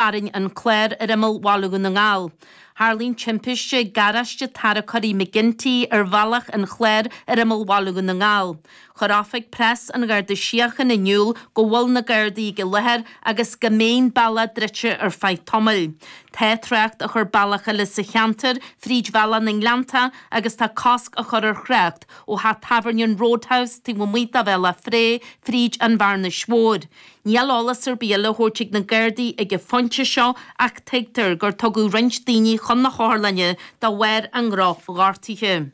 Tharraing an clár ar imeall Bhaile Dhún na nGall. Tharla an timpiste ag garáiste tarracóirí McGinty ar bhealach an Chláir ar imeall Bhaile Dhún na nGall. Chuir oifig preas an Gharda Síochána in iúl go bhfuil na Gardaí ag an láthair agus go mbeidh an bealach druidte ar feadh tamaill. Tá trácht á chur bealach eile sa cheantar fríd bhealach na nGleanntach agus tá cosc á chur ar thrácht ó theach tábhairne an Roadhouse taobh amuigh de Bhealach Féich fríd an Bhearnas Mhór. Níl eolas ar bith le thabhairt ag na Gardaí ag an phointe seo ach tuigtear gur tugadh roinnt daoine chun na hotharlainne de bharr a ndrochghortuithe.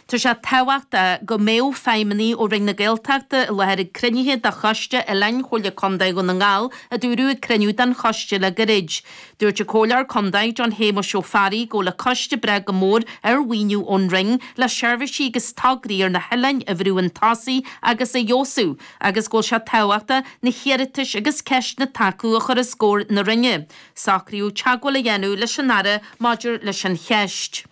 Tá sé tábhachtach go mbeadh feidhmeannaigh ó Roinn na Gaeltachta i láthair ag cruinnithe de Choiste Oileáin Chomhairle Contae Dhún na nGall, a dúradh ag cruinniú den choiste le gairid. Dúirt an Comhairleoir Contae, John Shéamais Ó Fearraigh, go bhfuil an coiste ag brath go mór ar mhaoiniú ón Roinn le seirbhísí agus tograí ar na hoileáin a bhrú 'un tosaigh agus a fheabhsú. agus go bhfuil sé tábhachtach na hiarratais agus ceisteanna atá acu a chur os comhair na Roinne, socraíodh teagmháil a dhéanamh leis an Aire maidir leis an cheist.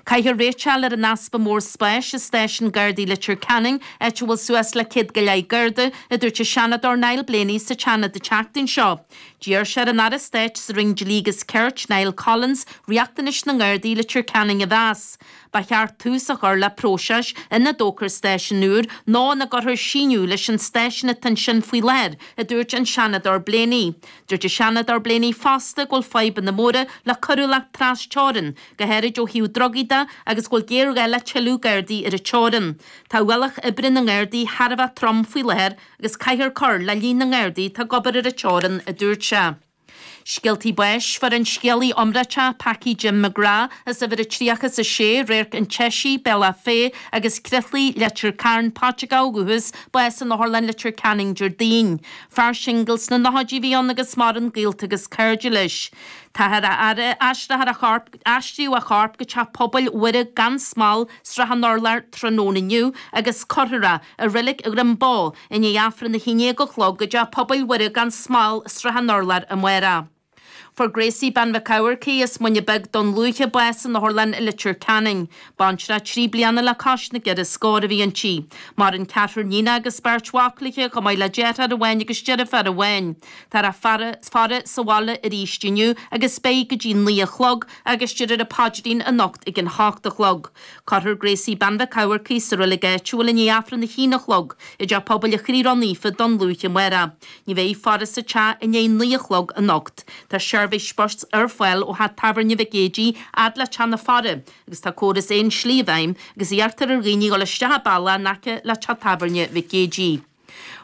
Caithfear réiteach a fháil ar an easpa mór spáis i Stáisiún Gardaí Leitir Ceanainn, áit a bhfuil suas le céad go leith Garda, a dúirt an Seanadóir Niall Blaney sa tSeanad an tseachtain seo. D'iarr sé ar an Aire Stáit sa Roinn Dlí agus Cirt, Niall Collins, riachtanais na nGardaí i Leitir Ceanainn a mheas. ba cheart tús a chur le próiseas ina dtógfar stáisiún úr nó ina gcuirfear síneadh leis an stáisiún atá ansin faoi láthair, a dúirt an Seanadóir Blaney. Dúirt an Seanadóir Blaney fosta go bhfuil fadhbanna móra le coiriúlacht tras-teorann, go háirid ó thaobh drugaí de, agus go bhfuil géarghá le tuilleadh Gardaí ar an teorann. Tá ualach oibre na nGardaí thar a bheith trom faoi láthair agus caithfear cur le líon na nGardaí atá ag obair ar an teorann, a dúirt sé. Scéaltaí Báis, Fuair an scéalaí iomráiteach Packie Jim McGrath as uimhir a 36 Radharc an tSeisígh, Bealach Féich, agus Crithlaigh, Leitir Cairn, Paiteagó ó dhúchas, bás in Otharlann Leitir Ceanainn, Déardaoin. Fear singil sna nóchaidí a bhí ann agus maireann gaolta agus cairde leis. Táthar á aithris, aistrithe a chorp, aistríodh a chorp go teach pobail Mhuire gan Smál, Srath an Urláir tráthnóna inniu agus cuirfear é i Reilig Dhroim Bó i ndiaidh Aifreann a haon déag a chlog i dTeach Pobail Mhuire gan Smál Srath an Urláir amárach. Fuair Gracie Bean Mhic Eachmharcaigh as Muine Beag, Dún Lúiche, bás in Otharlann Leitir Ceanainn. Baintreach trí bliana le cois na gceithre scór a bhí inti. Maireann ceathrar níon agus beirt mhac léithi chomh maith le deartháir amháin agus deirfiúr amháin. Táthar á faire sa bhaile arís inniu agus beidh go dtí naoi a chlog agus déarfar an paidrín anocht ag an h-ocht a chlog. Cuirfear Gracie Bean Mhic Eachmharcaigh sa roilig áitiúil i ndiaidh Aifreann a haon a chlog i dteach pobail an Chroí Rónaofa, Dún Lúiche, amárach. Ní bheidh faire sa teach i ndiaidh naoi a chlog anocht. Tá seirbhís spóirt ar fáil ó theach tábhairne Mhic Géidigh fhad le teach na faire agus tá córas aon slí i bhfeidhm agus iarrtar ar dhaoine dhul isteach an bealach in aice le teach tábhairne Mhic Géidigh.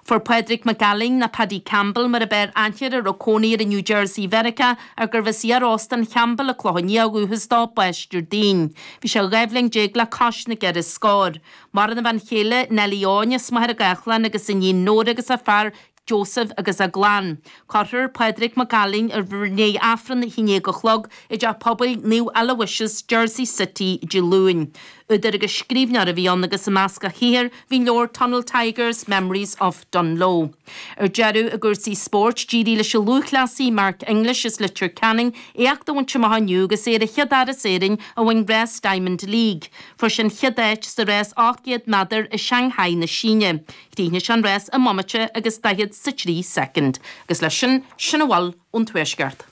Fuair Pádraig Mac Ailín, nó Paddy Campbell mar ab fhearr aithne air, a raibh cónaí air i New Jersey Mheiriceá, ach gurbh as iar Óstán Champbell ar an Chlochán Liath ó dhúchas dó, bás Déardaoin. Bhí sé dhá bhliain déag le cois na gceithre scór. Maireann a bhean chéile Nellie Eoin, as Machaire Gathlán agus iníon Nóra agus a fear Joseph agus a gclann. Cuirfear Pádraig Mac Ailín i ndiaidh Aifreann a haon déag a chlog i dteach pobail Naomh Aloysius, Jersey City, Dé Luain. Údar agus scríbhneoir a bhí ann agus i measc a shaothair bhí leabhar Tunnel Tigers, Memories of Dungloe. Ar deireadh, i gcúrsaí spóirt, d'éirigh leis an lúthchleasaí Mark English as Leitir Ceanainn éacht a bhaint amach inniu agus é ar an chéad fhear as Éirinn a bhain rás Diamond League. Fuair sé an chéad áit sa rás 800 méadar i Shang-hai na Síne. Chríochnaigh sé an rás i mbomaite agus daichead 's a trí soicind, agus leis sin, sin a bhfuil ón Tuaisceart.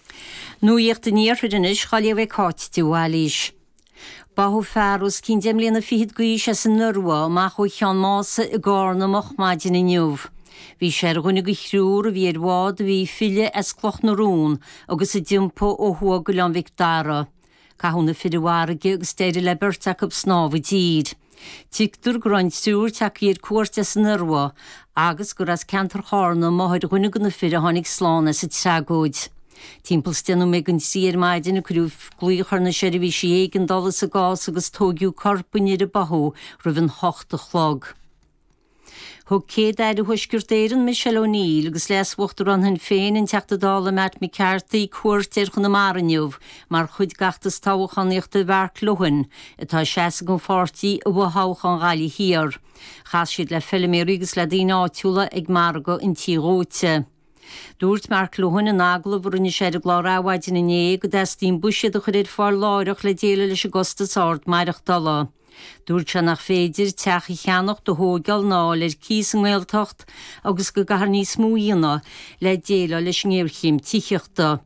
Nuaíocht an Iarthair anois dhá léamh ag Cáit de Bhailís. Báthadh fear os cionn deich mbliana fichead d'aois as an Iorua amach ó Cheann Mása i gCarna moch maidin inniu. Bhí sé ar dhuine de thriúr a bhí ar bhád a bhí ag filleadh as Cloch na Rón agus a d'iompaigh ó thuaidh d'Oileán Mhic Dara. Caitheadh na fir i bhfarraige agus d'éirigh le beirt acu snámh i dtír. Tuigtear go raibh an triúr tagtha ar cuairt as an Iorua agus gur as ceantar Chárna máthair dhuine de na fir a tháinig slán as an tragóid. Timpeall is deich nóiméad don trí ar maidin cuireadh glaoch ar na seirbhísí éigeandála sa gcás agus tóigeadh corp an fhir a báthadh roimh an hocht a chlog. Thug Céad-Aire Thuaisceart Éireann Michelle O'Neill agus Leas-Uachtarán Shinn Féin, an Teachta Dála Matt McCarthy, cuairt ar Chonamara inniu mar chuid d'fheachtas toghchánaíochta Mhark Lohan, atá ag seasamh don pháirtí i bhfothoghchán Ghaillimh Thiar. Chas siad le feiliméaraí agus le daoine áitiúla ag Margadh an Tí Dhóite. Dúirt Mark Lohan in agallamh a rinne sé ar an gclár Adhmhaidin inné go dteastaíonn buiséad a chur ar fáil láithreach le déileáil leis an gcostas ard maireachtála. Dúirt sé nach féidir teach a cheannacht, a thóigeáil ná a fháil ar cíos sa nGaeltacht agus go gcaithfear níos mó a dhéanamh le déileáil leis an ngéarchéim tithíochta.